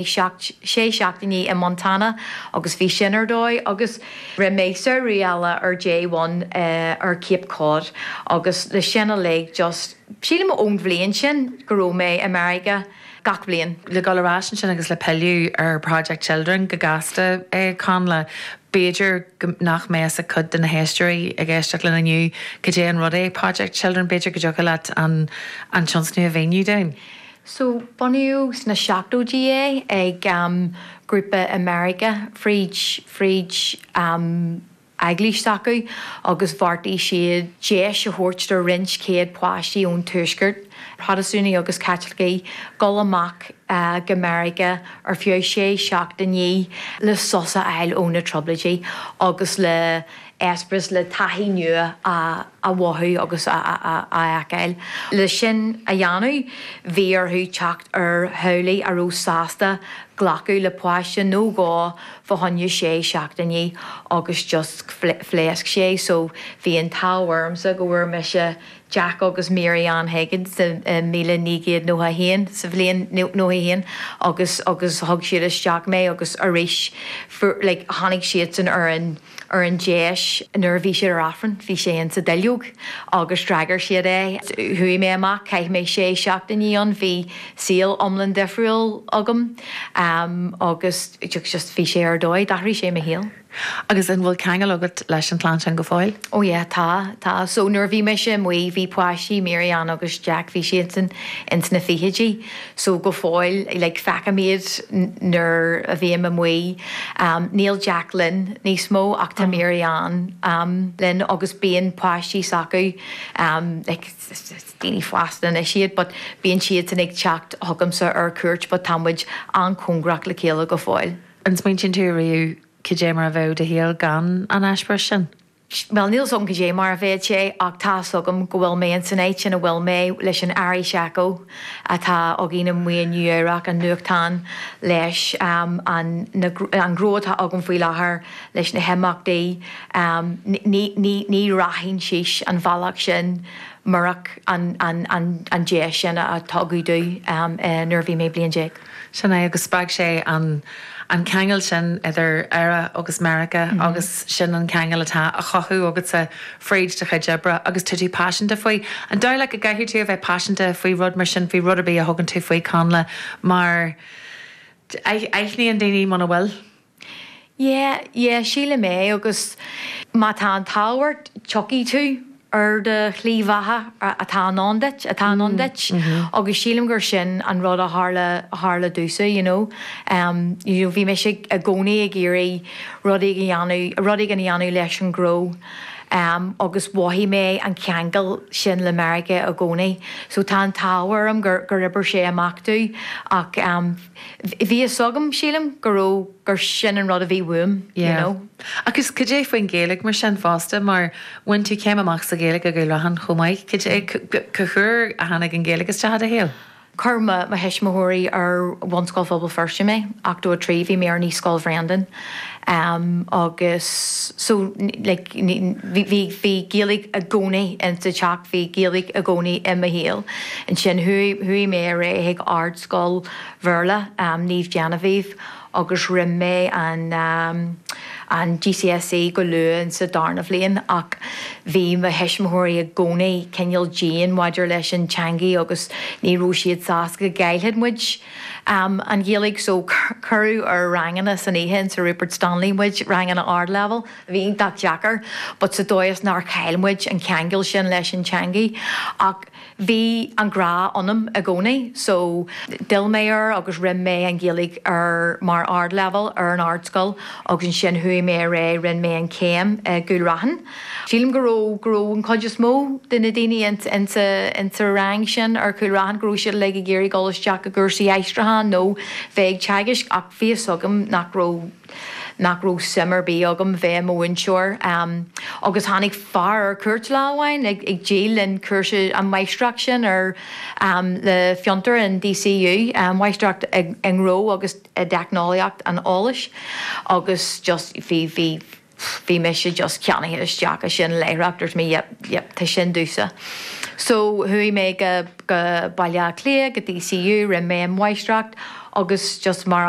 seacht, sé seachtainí i Montana agus bhí sin ar dóigh agus rinne mé samhradh eile ar J one ar Cape Cod agus le sin uilig just sílim ón bhliain sin go raibh mé i Meiriceá gach bliain. Le dul ar ais ansin agus le pilleadh ar Project Children go gasta a Chonnla, b'fhéidir go nach mbeadh a fhios ag cuid de na héisteoirí ag éisteacht linn inniu goidé an rud é Project Children, b'fhéidir go dtiocfadh leat an tionscnamh a mhíniú dúinn. So, bunaíodh sna seachtóidí é ag grúpa i Meiriceá fríd, fríd eaglais s'acu agus bheartaigh siad deis a thabhairt do roinnt céad páiste ón Tuaisceart, Protastúnaigh agus Caitlicigh, dul amach go Meiriceá ar feadh sé seachtainí le sos a fháil ó na Trioblóidí agus le. eispéireas le taithí nua a mhothú agus a fheiceáil. Leis sin a dhéanamh, bhí orthu teacht ar theaghlaigh a raibh sásta glacadh le páiste nó dhó fá choinne sé seachtainí agus just phléasc sé so bhí an t-ádh ormsa go bhfuair mise Jack agus Mary Ann Higgins sa míle naoi gcéad nócha haon, sa bhliain nócha haon, agus thug siad isteach mé agus arís fuair like tháinig siadsan ar an. ar an deis nuair a bhí siad ar Aifreann, bhí sé in sa duilleog agus d'fhreagair siad é. Chuaigh mé amach, chaith mé sé seachtainí ann, bhí saol iomlán difriúil agam agus just bhí sé ar dóigh, d'athraigh sé mo shaol. Agus an bhfuil ceangal agat leis an chlann sin go fóill? Ó yeah, tá, tá. So nuair a bhí mise amuigh, bhí páistí, Mary Ann agus Jack, bhí siadsan ins na fichidí. so go fóill, like feicim iad nuair a bhím amuigh, níl Jack linn níos mó ach tá Mary Ann linn agus bíonn páistí s'acu, like is daoine fásta anois iad but bíonn siadsan ag teacht chugamsa ar chuairt but tá muid an-chóngarach le chéile go fóill. An smaointíonn tú riamh cad é mar a bheadh do shaol gan an eispéireas sin? Bhuel, níl a fhios agam cad é mar a bheadh sé, ach tá a fhios agam go bhfuil mé ins an áit sin a bhfuil mé, leis an Irish Echo, atá againn amuigh i Nua-Eabhrac, an nuachtán, leis an, na, an gnó atá agam faoi láthair leis na himeachtaí, ní, ní, ní rachainn síos an bhealach sin murach an, an, an, an deis sin a tugadh dom nuair a bhí mé bliain déag. Sin é, agus spreag sé an ceangal sin idir Éire agus Meiriceá agus sin an ceangal atá á chothú agatsa fríd do chuid oibre agus tá tú paiseanta faoi. An dóigh leat go gcaithfidh tú a bheith paiseanta faoi rud mar sin, faoi rud ar bith a thugann tú faoi, Connla, mar aithníonn daoine muna bhfuil? Yeah, yeah, sílim é, agus má tá an t-ádh ort, tiocfaidh tú ar do shlí bheatha atá i ndán duit, atá i ndán duit, agus sílim gur sin an rud a tharla, a tharla domhsa, you know. You know, bhí mise i gcónaí ag iarraidh rud éigin a dhéanamh, rud éigin a dhéanamh leis an ngnó, agus mhothaigh mé an ceangal sin le Meiriceá i gcónaí, so tá an t-ádh orm gur, gur oibir sé amach domh, ach. Bhí fhios agam, sílim, go raibh, gur sin an rud a bhí uaim, you know. Yeah. Agus goidé faoin Ghaeilge mar sin fosta, mar bhain tú céim amach sa Ghaeilge i gCúil Raithin chomh maith, goidé, cad chuige a tháinig an Ghaeilge isteach i do shaol? Chuir mo thuismitheoirí ar Bhunscoil Phobal Feirste mé, ochtó trí, bhí mé ar naíscoil Bhreandan. Agus so, like, ní, bhí, bhí, bhí Gaeilge i gcónaí in sa teach, bhí Gaeilge i gcónaí i mo shaol. Ansin chuaigh, chuaigh mé ar aghaidh ag Ardscoil Bhéarla Naomh Genevieve agus rinne mé an, an GCSE go luath in sa darna bhliain ach bhí mo thuismitheoirí i gcónaí cineál dian maidir leis an teangaidh agus ní raibh siad sásta go gcaillfeadh muid an Ghaeilge so. Cuireadh ar ranganna san oíche in Sir Rupert Stanley muid, ranganna ardleibhéil a bhí iontach deacair but sa dóigh is nár chaill muid an ceangal sin leis an teangaidh ach bhí an grá ionam i gcónaí so d'fhill mé air agus rinn mé an Ghaeilge ar mar ardleibhéil ar an ardscoil agus ansin chuaigh mé ar aghaidh rinn mé an céim i gCúil Raithin. Sílim go raibh, go raibh an chuid is mó de na daoine in sa rang sin ar Chúil Raithin, go raibh siad uilig ag iarraidh dul isteach i gcúrsaí aistriúcháin nó bheith ag teagaisc ach bhí fhios agam nach raibh, nach raibh suim ar bith agam bheith i mo mhúinteoir. Agus tháinig fear ar cuairt lá amháin ag díol linn cúrsa an mháistreacht sin ar le Fiontar in DCU, máistreacht i ngnó agus i dteicneolaíocht an eolais agus just bhí, bhí, pff, bhí mise just ceannaithe isteach i sin láithreach, dúirt mé yep, yep, tá sin domhsa. So chuaigh mé go, go Baile Átha Cliath, go DCU, rinne mé an mháistreacht agus just mar a,